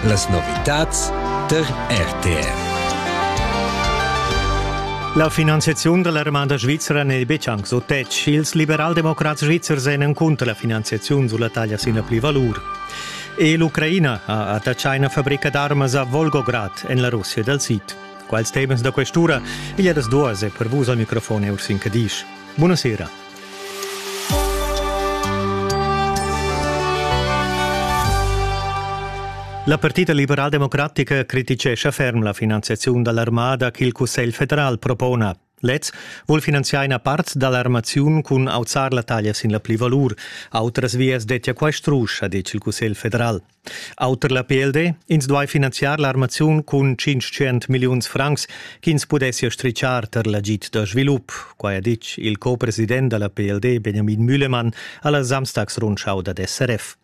Las novitads der RTR. La finanziaziun della Romanda Svizzera n'è betg anc so tetg. Ils liberaldemocrats svizzers èn encunter la finanziaziun sulla taglia sin pli valur. E l'Ucraina ha attaccà una fabbrica d'armas a Volgograd en la Russia dal Sid. Quals temas da questura? Igl è das duas e per vus al microfon Ursin Cadisch. Buonasera. La Partida liberaldemocratica criticescha ferm la finanziaziun dall'armada ch'il Cussegl federal propona. Lez vul finanziar ina part dall'armaziun cun auzar la taglia sin la plivalur. Autras vias dettia quai strusch, ha detg il Cussegl federal. Auter la PLD, ins duai finanziar l'armaziun cun 500 milliuns francs ch'ins pudessia stritschar tar l'agid da svilup. Quai ha ditg il co-president da la PLD Benjamin Mühlemann a la Samstagsrundschau dad SRF.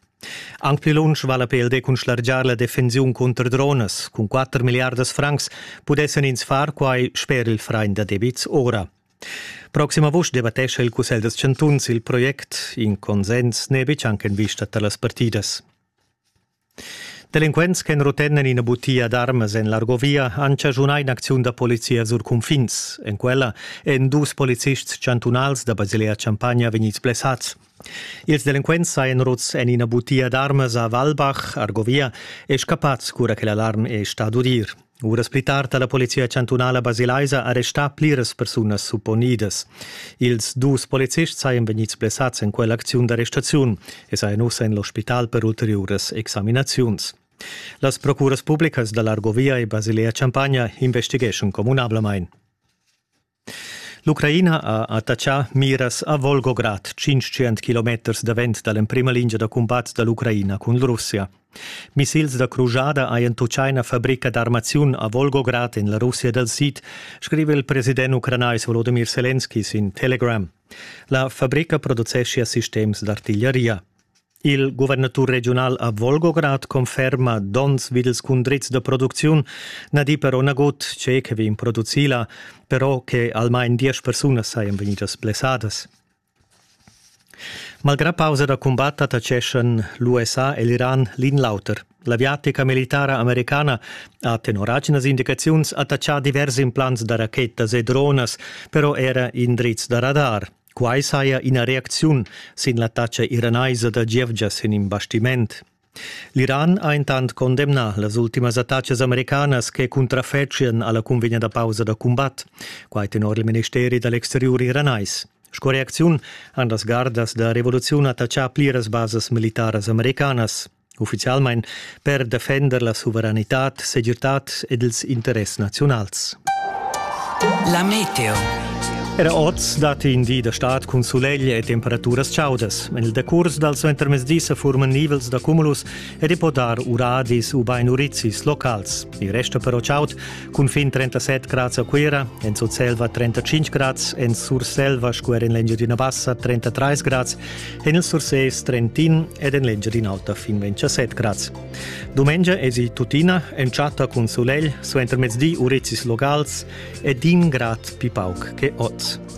Anc pli lunsch va la PLD cun schlargiar la defensiun cunter dronas. Cun 4 milliardas francs pudessan ins far quai sper il frain da debits ora. Proxim avust debattescha il Cussegl dels chantuns il project. In consens n'è betg anche en vista da las partidas. Delinquents che rotennen ina butia d'armas en l'Argovia han chaschunà in'acziun da polizia sur cunfins. En quella èn dus policists chantunals da Basilea Champagna vegnids blessads. Ils delinquents sajan ruts en ina butia d'armas a Walbach, Argovia, e scappads cura che l'alarm è stà d'udir. Uras pli tard ha la polizia chantunala basilaisa arrestà pliras persunas supponidas. Ils dus policists sajan vegnids blessads en quell'acziun d'arrestaziun e sajan ussa en l'ospital per ulteriuras examinaziuns. Las procuras publicas da l'Argovia e Basilea Champagna investigeschan communablamain. L'Ucraina ha attachà miras a Volgograd, 500 kilometers davent da l'emprima lingia da cumbat da l'Ucraina cun Russia. Missils da crujada hajan tuccà ina fabrica d'armaziun a Volgograd en la Russia dal sid, scrive il president ucranais Volodymyr Selenski sin Telegram. La fabrica produceschia sistems d'artigliaria. Il guvernatur regiunal a Volgograd conferma donns vid ils cundrits da producziun na di però nagut tge che vegn producì là, però che almain diesch persunas sajan vegnidas blessadas. Malgrà pausa da cumbat attaccheschan l'USA e l'Iran l'in l'auter. L'aviatica militara americana ha tenor aginas indicaziuns attachà divers implants da rachetas e dronas, però era indrizs da radar. Quai saja ina reacziun sin l'attacca iranaisa da gievgias en in bastiment. L'Iran ha intant condemnà las ultimas attaccas americanas che cuntrafetschian alla cunvegna da pausa da cumbat, quai tenor il ministeri da l'exteriur iranais. Sco reacziun han las gardas da revoluziun attaccà pliras basas militaras americanas. ufficialmain per defender la suveranitad, segirtad ed ils interess naziunals. La meteo. Era oz datti in di da stad cun sulegl e temperaturas chaudas. En il decurs dal suentermezdi sa furman nivels da cumulus ed i po dar uradis u bain urizis locals. Il resta però chaud, Cunfin 37 grads a Cuira, en Sutselva 35 grads, en Surselva sco er en l'Engiadina Bassa 33 grads, en il Surses Trentin ed en l'Engiadina Auta fin 27 grads. Dumengia esi tuttina en chatta cun sulegl suenter mezdi urizis locals e d'in grad pi pauc che oz.